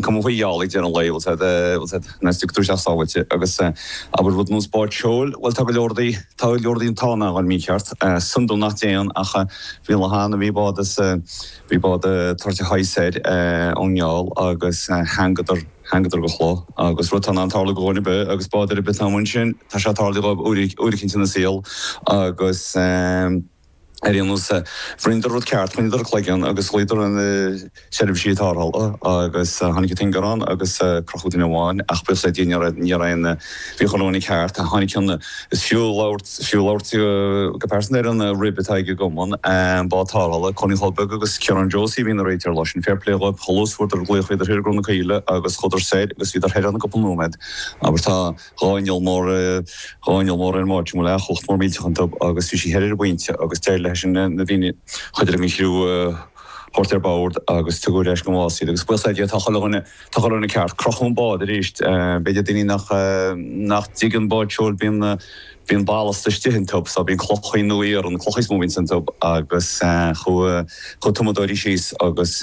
Cuma faoi gheallta ag deireadh an lae, bhuel said, bhuel said, má thagtar isteach sábháilte agus, abair rud nós bád seoil, bhuel tá go leor dí, tá go leor dí an t-ádh nach bhfuil mícheart, san dubh nach dtéann ach bhí lá ann a bhí bád as, bhí bád ag tíocht soir ón ngeall agus theangadar, theangadar go chloch agus rud tá in ann tarlú go dhuine ar bith agus bád ar bith atá amuigh ansin, tá sé tarlaithe dhóibh uair, uair eicínt ina saol agus. Ar aon nós, rinneadar rud ceart, choinneadar a gcloigeann agus ghlaodar ar na seirbhísí tarrthála agus tháinig an t-ingearán agus crochadh duine amháin ach buíochas le Dia ní raibh aon, bhí chuile dhuine ceart, tháinig ceann is fiú labhairt, fiú labhairt go pearsanta ar an rib atá ag an gCumann Bád Tarrthála, Colin Chóil Beag agus Ciarán Josie a bhí ina réiteoir an lá sin. Fair play dhóibh, chualathas, fuaireadar glaoch, bhíodar thiar i gCruach na Caoile agus chuadar soir agus bhíodar thoir ann i gcúpla nóiméad abair. Tá. Dhomhnaill Mhóir Dhomhnaill Mhóir ar Mháirtín Mhóir yacht mór millteach an Dub agus bhí sí thoir ar an bPointe agus d'éirigh léi sin na daoine chuid den chriú a thabhairt ar bord agus tugadh ar ais go Más iad agus buíochas le Dia tá chuile dhuine tá chuile dhuine ceart. Crochadh an bád arís b'fhéidir daoine nach nach dtuigeann bád seoil bíonn na bíonn ballast istigh iontu so bíonn clocha nó iarann clocha is mó a bhíonn iontu agus chuaigh chuaigh tumadóirí síos agus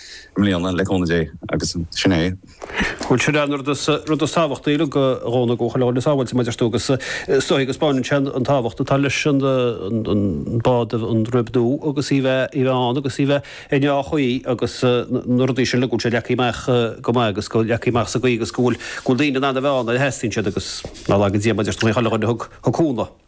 i mbliana, le cúnamh Dé, agus sin é. Bhuel, sin é an rud is, rud is tábhachtaí, like, go dtáinig chuile dhuine sábháilte mar a deir tú agus is dóigh go spáineann sé an tábhacht atá leis an, an bád an rib nua agus í bheith, í bheith ann agus í bheith i ndea-chaoi agus na rudaí sin, like, go bhfuil sé leagtha amach go maith agus go leagtha amach sa gcaoi agus go bhfuil, go bhfuil daoine in ann a bheith ann nuair a theastaíonn siad agus nár laga Dia mar a deir tú, a Thiarna a thug, thug cúnamh.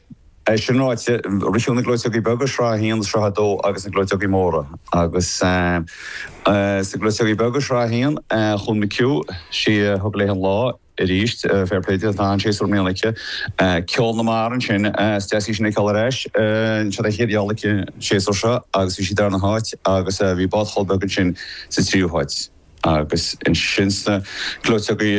É sin ráite, ritheadh na gleoiteogaí beaga, sraith a haon agus sraith a dó, agus na gleoiteogaí móra. Agus sna gleoiteogaí beaga, sraith a haon, chuaigh an McHugh, sí a thug léi an lá arís, fair play di, tá an-séasúr i mbliana aici. Ceol na Mara ansin, is deas í sin a fheiceáil ar ais. Seo an chéad gheall aici an séasúr seo agus bhí sí sa darna háit agus bhí bád Chóil Beag ansin sa tríú háit. Agus ansin sna gleoiteogaí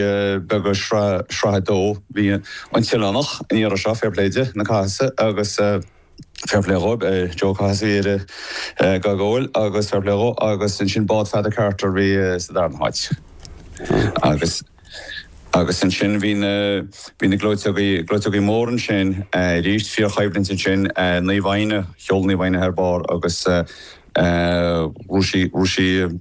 beaga sraith a dó bhuaigh an tOileánach, an iarraidh seo, fair play di, na Cathasaigh agus fair play dhóibh, Joe Cathasaigh a dhírigh dhá gcúil agus fair play dhó agus ansin Bád Pheada Carter a bhí sa darna háit. Agus agus ansin bhí na bhí na gleoiteogaí gleoiteogaí móra ansin aríst, fíorchoimhlint ansin, Naomh Éinne, sheol Naomh Éinne thar barr agus rug sí rug sí,